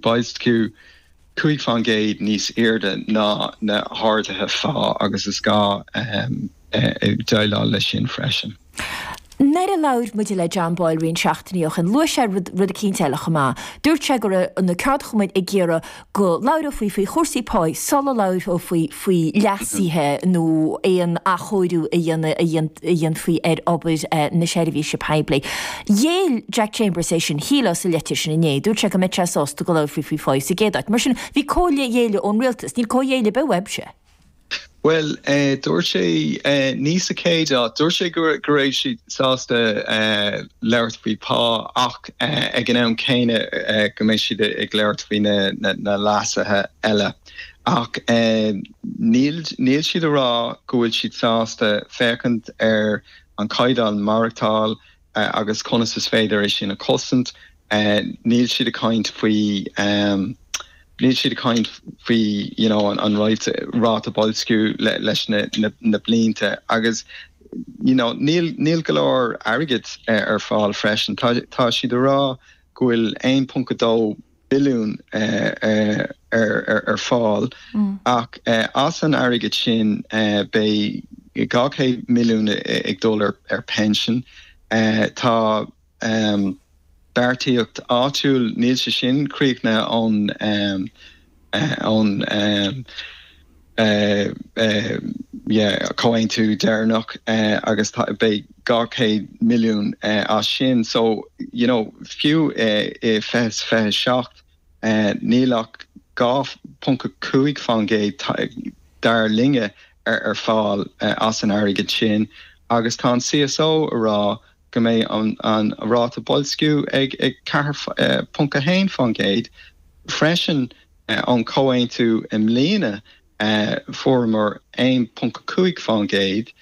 Boilsciú cúig fán gcéad níos airde ná na harduithe phá agus is gá déileáil leis sin freisin. Nuair a labhair muid le John Boyle roinnt seachtainí ó shin, luaigh sé rud eicínt eile chomh maith. Dúirt sé go raibh na ceardchumainn ag iarraidh go labhrófaí faoi chúrsaí páí sula labhrófaí faoi leasuithe nó aon athchóiriú a dhéanamh a dhéanfaí ar obair na seirbhíse poiblí. Ghéill Jack Chambers é sin, shílfeá, sa leitir sin inné. Dúirt sé go mbeadh sé sásta go labhrófaí faoi phá sa gcéad áit. Mar sin, bhí comhghéilleadh ón rialtas. Níl comhghéilleadh ar bith uaibhse. Bhuel, dúirt sé, ní sa chéad áit. Dúirt sé go raibh siad sásta labhairt faoi phá ach ag an am céanna go mbeidh siad ag labhairt faoi na leasuithe eile. Ach níl siad ag rá go bhfuil siad sásta féachaint ar an chaighdeán maireachtáil agus conas is féidir é sin a chosaint, níl siad ag caint faoi níl siad ag caint faoi you know an ráta ráta boilsciú le na na blianta agus you know níl níl go leor airgid ar fáil freisin. Tá tá siad ag rá go bhfuil 1.2 billiún ar fáil ach as an airgead sin beidh 200 milliún ag dul ar pinsean. Tá margaíocht áitiúil, níl sé sin críochnaithe ón. eh, eh, yeah, comhaontú deireanach eh, agus tá, beidh 200 milliún eh, as sin. So, you know, fiú i, i 2027, eh, níl ach 2.5 fán gcéad ta- dar linne ar, ar fáil eh, as an airgead sin agus tá an CSO ag rá go mbeidh an ráta boilsciú ag 4.1% freisin ón chomhaontú i mbliana, fuaireamar 1.5%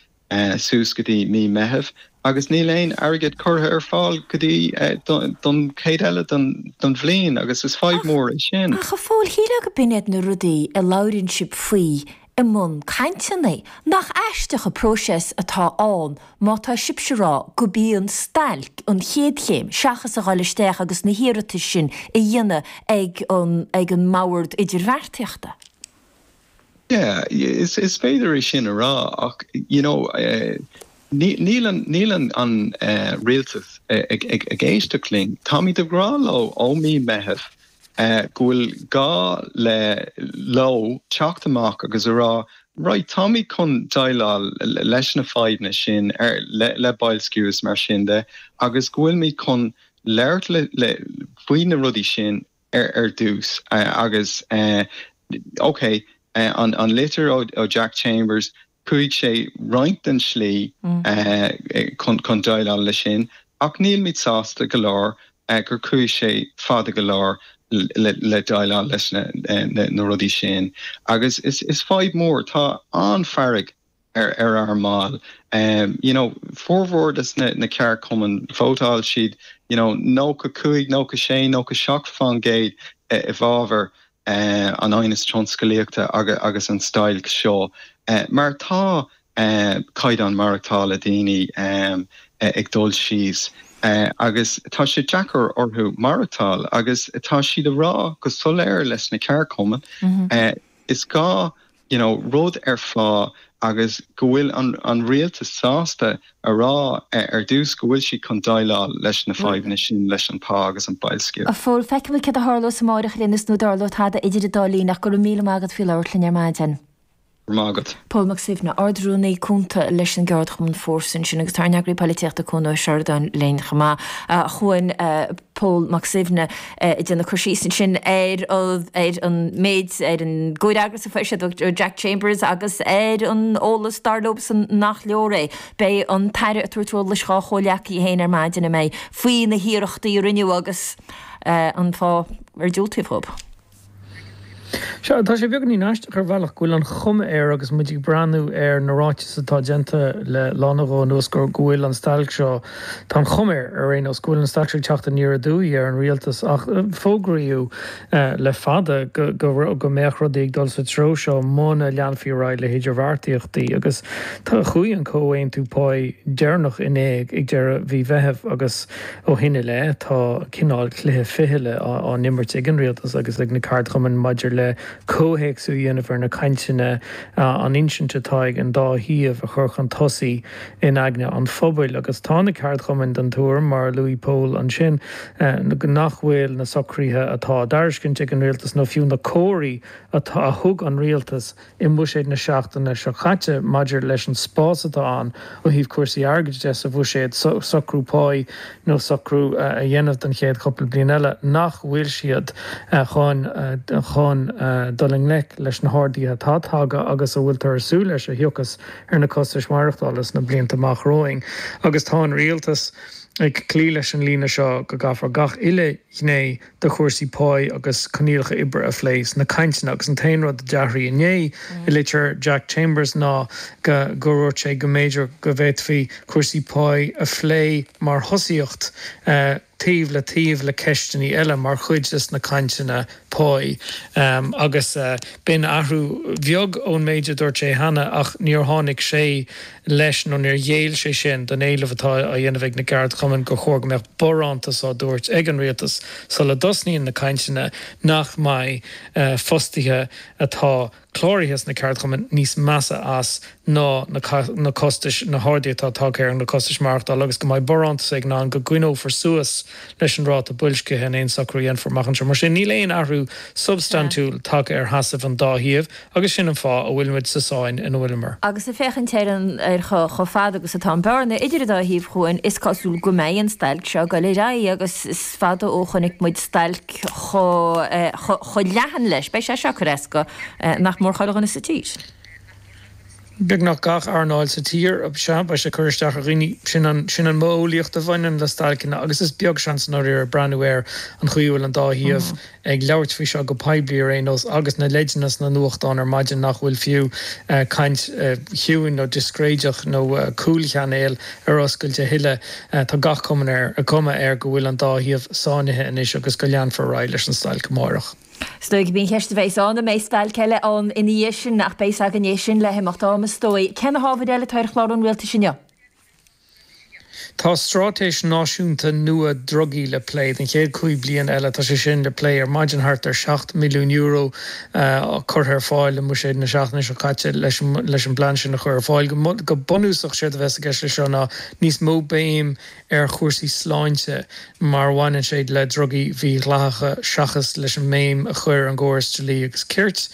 suas go dtí mí Meitheamh agus níl aon airgead curtha ar fáil go dtí don chuid eile den bhliain agus is fadhb mhór é sin. Ach a Phóil, shílfeá gob in iad na rudaí a labhraíonn sibh faoi i mbun cainteanna, nach aisteach an próiseas atá ann má tá sibhse ag rá gurb í an stailc an chéad chéim seachas a dhul isteach agus na hiarratais sin a dhéanamh ag an ag an mbord idirbheartaíochta? Yeah, is féidir é sin a rá ach you know níl an níl an an rialtas ag ag ag éisteacht linn. Táimid ag rá leo ó mí Meitheamh go bhfuil gá le, leo, teacht amach agus a rá, right, táimid chun déileáil leis na fadhbanna sin ar, le, le boilsciú is mar sin de agus go bhfuilimid chun labhairt le, le, faoi na rudaí sin ar, ar dtús agus, eh, okay, an, an litir ó, ó Jack Chambers, Chuaigh sé roinnt den tslí chun déileáil leis sin ach nílimid sásta go leor gur chuaigh sé fada go leor le déileáil leis na rudaí sin. Agus is fadhb mhór, tá an-fhearg ar ár mbaill. You know, formhór de na ceardchumainn, vótáil siad, you know, nócha cúig, nócha sé, nócha seacht faoin gcéad i bhfabhar an aighneas tionscalaíochta agus an stailc seo mar tá caighdeán maireachtála daoine ag dul síos agus tá sé deacair orthu maireachtáil agus tá siad a rá go soiléir leis na ceardchumainn is gá you know, rud a fháil agus go bhfuil an an rialtas sásta a rá ar dtús go bhfuil siad chun déileáil leis na fadhbanna sin leis an pá agus an boilsciú. A Phóil, feicfimid cad a tharlós amárach mar sin nó an dtarlóidh tada idir an dá linn ach go raibh míle maith agat as labhairt linn ar maidin. Go raibh maith agat. Pól Mac Suibhne, Ard Rúnaí Cúnta leis an gCeardchumann Fórsa ansin agus tá ár n-eagraí poilitíochta Cuan Ó Seireadáin linn chomh maith. A Chuain. Pól Mac Suibhne ag déanamh cur síos ansin ar an méid, ar an gcomhfhreagras a fuair siad ó Jack Chambers agus ar an eolas, dar leosan, nach leor é. Beidh an tAire ag tabhairt eolais dhá chomhghleacaithe féin ar maidin, an mbeidh, faoi na hiarrachtaí a rinneadh agus an fáth ar diúltaíodh dhóibh. Sea, tá sé beagainín aisteach ar bhealach go bhfuil an chuma air agus muid ag breathnú ar na ráitis atá déanta le lá nó dhó anuas go bhfuil an stailc seo, tá an chuma air ar aon nós, go bhfuil an stailc seo ag teacht aniar aduaidh ar an rialtas ach fógraíodh le fada go mbeadh rudaí ag dul sa treo seo muna leanfaí ar aghaidh le hidirbheartaíochtaí agus chuaigh an comhaontú páí deireanach in éag ag deireadh mhí Mheithimh agus Ó shin i leith, tá cineál cluiche fichille á imirt ag an Rialtas agus ag na ceardchumainn maidir le comhthéacsú a dhéanamh ar na cainteanna, an insint atá ag an dá thaobh a chur chun tosaigh in aigne an phobail. Agus tá na ceardchumainn den tuairim, mar a luaigh Pól ansin, nach bhfuil na socruithe atá á dtairiscint ag an Rialtas nó fiú na comharthaí a thug an Rialtas, i mBuiséad na seachtaine seo caite maidir leis an spás atá ann ó thaobh cúrsaí airgid de sa Bhuiséad, socrú páí nó socrú a dhéanamh don chéad chúpla bliain eile, nach bhfuil siad chun dul i ngleic leis na harduithe atá tagtha agus a bhfuiltear ag súil leis a thiocfas ar na costais mhaireachtála sna blianta amach romhainn. Agus tá an Rialtas ag cloí leis an líne seo go gcaithfear gach uile ghné de chúrsaí páí agus coinníollacha oibre a phlé sna cainteanna agus an t-aon rud a d'athraigh inné i litir Jack Chambers ná go ndúirt sé go mb'fhéidir go bhféadfaí cúrsaí páí a phlé mar thosaíocht taobh le taobh le ceisteannaí eile mar chuid de na cainteanna páí agus b'in athrú beag ón méid a dúirt sé cheana ach níor tháinig sé leis nó níor ghéill sé sin don éileamh atá á dhéanamh ag na gceardchumainn gur chóir go mbeadh barántas á dtabhairt ag an Rialtas sula dtosnaíonn na cainteanna nach mbeidh fostaithe atá cláraithe sna ceardchumainn níos measa as ná na costais, na harduithe atá tagtha ar na costais maireachtála agus go mbeidh barántas ann go gcoinneofar suas leis an ráta boilscithe in aon socrú a dhéanfar amach anseo. Mar sin, níl aon athrú substaintiúil tagtha ar sheasamh an dá thaobh. Agus sin an fáth a bhfuil muid sa sáinn ina bhfuil muid. Agus ag féachaint ar an ar chomh fada agus atá an bearna idir an dá thaobh, a Chuain, is cosúil go mbeidh an stailc seo ag dul ar aghaidh agus is fada ó chonaic muid stailc chomh leathan leis. Beidh sé seo ag cur as do nach mór chuile dhuine sa tír. beagnach gach earnáil sa tír, sea beidh sé ag cur isteach ar dhaoine. Sin an mhodheolaíocht a bhaineann le stailceanna agus is beag seans faraor ag breathnú ar an chaoi a bhfuil an dá thaobh ag labhairt faoi seo go poiblí ar aon nós agus na leideanna sna nuachtáin ar maidin nach bhfuil fiú caint chiúin nó discréideach nó cúlchainéal ar oscailt a thuilleadh. Tá gach cuma ar an cuma air go bhfuil an dá thaobh sáinnithe anois agus go leanfar ar aghaidh leis an stailc amárach. Is dóigh go mbíonn ceist a bheith ann, an mbeidh stailc eile ann ina dhiaidh sin, ach beidh a fhios againn é sin le himeacht ama is dóigh. Cé na hábhair eile atá ar chlár an rialtais inniu? Tá stráitéis náisiúnta nua drugaí le plé don chéad cúig bliain eile. Tá sé sin le plé ar maidin. Thart ar €7 milliún curtha ar fáil i mbuiséad na seachtaine seo caite leis an bplean sin a chur ar fáil. Go bunúsach séard a bheas i gceist leis seo ná níos mó béim ar chúrsaí sláinte mar a bhaineann sé le drugaí mídhleathacha seachas leis an mbéim a chur ar an gcóras dlí agus cirt.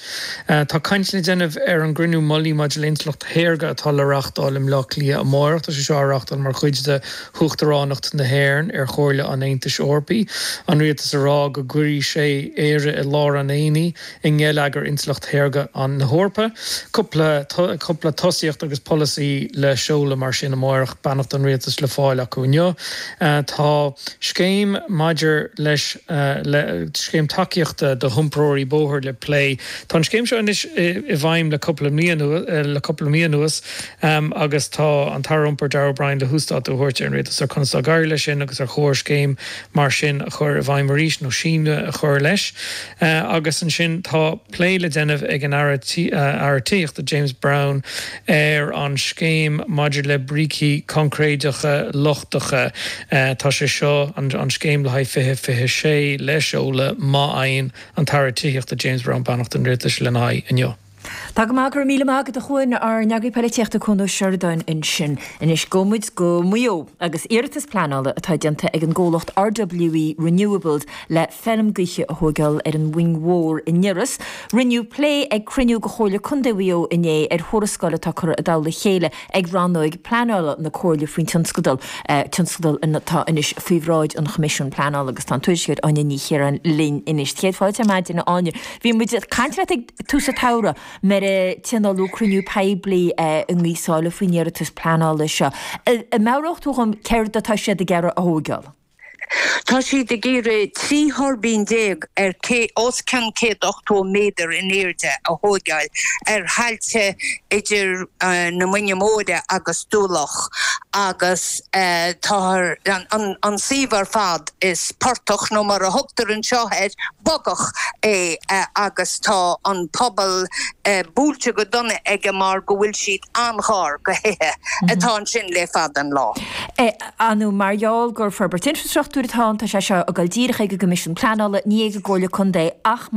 Tá caint le déanamh ar an gCruinniú Mullaigh maidir le Intleacht Shaorga atá le reáchtáil i mBleá Cliath amárach. Tá sé seo á reáchtáil mar chuid de hUachtaránacht na hÉireann ar Chomhairle an Aontais Eorpaí. An Rialtas a rá go gcuirfidh sé Éire i lár an aonaigh. i ngeilleagar intleacht shaorga na hEorpa. Cupla tosaíocht agus polasaí le seoladh mar sin amárach, beannacht an Rialtais le fáil acu inniu. Tá scéim maidir leis an scéim tacaíochta do hiompróirí bóthair le plé. Tá an scéim seo anois i bhfeidhm le cupla mí le cupla mí anuas agus tá an tAire Iompair, Darragh O'Brien le huasdátú a thabhairt don Rialtas ar conas atá ag éirí leis sin agus ar chóir scéim mar sin a chur i bhfeidhm arís nó síneadh a chur leis. Agus ansin tá plé le déanamh ag an Aire Tithíochta, James Browne, ar an scéim maidir le brící concréideacha lochtacha. Tá sé seo, an scéim le haghaidh 2026, le seoladh, má fhaigheann an tAire Tithíochta, James Browne, beannacht an Rialtais lena aghaidh inniu. Tá go maith, go raibh míle maith agat a Chuan, ár n-eagraí poilitíochta Cuan Ó Seireadáin ansin. Anois gabhfaidh muid go Maigh Eo agus iarratas pleanála atá déanta ag an gcomhlacht RWE Renewables le feilm gaoithe a thóigeáil ar an Mhuing Mhór in Iorras. Rinneadh plé ag cruinniú de Chomhairle Contae Mhaigh Eo inné ar thuarascáil atá curtha i dtoll a chéile ag rannóig pleanála na Comhairle faoin tionscadal, tionscadal atá anois faoi bhráid an Choimisiúin Pleanála agus tá an tuairisceoir Áine Ní Chiaráin linn anois. Céad fáilte ar maidin a Áine. Bhí muid ag caint leat ag tús an tsamhraidh nuair a tionóladh cruinniú poiblí i nGaoth Sáile faoin iarratas pleanála seo. An meabhródh tú dhom céard atá siad ag iarraidh a thóigeáil? Tá siad ag iarraidh trí thuirbín déag ar os cionn 180 méadar in airde a thógáil ar thailte idir na Muinge Móire agus Dumha Locha agus táthar an suíomh ar fad is portach nó mar a thugtar anseo air bogach é agus tá an pobal buailte go dona aige mar go bhfuil siad an-ghar do thithe atá ansin le fada an lá. a nó mar gheall gur forbairt infreastruchtúir atá ann, tá sé seo ag dul díreach ag an gCoimisiún Pleanála, ní ag an gComhairle Contae, ach.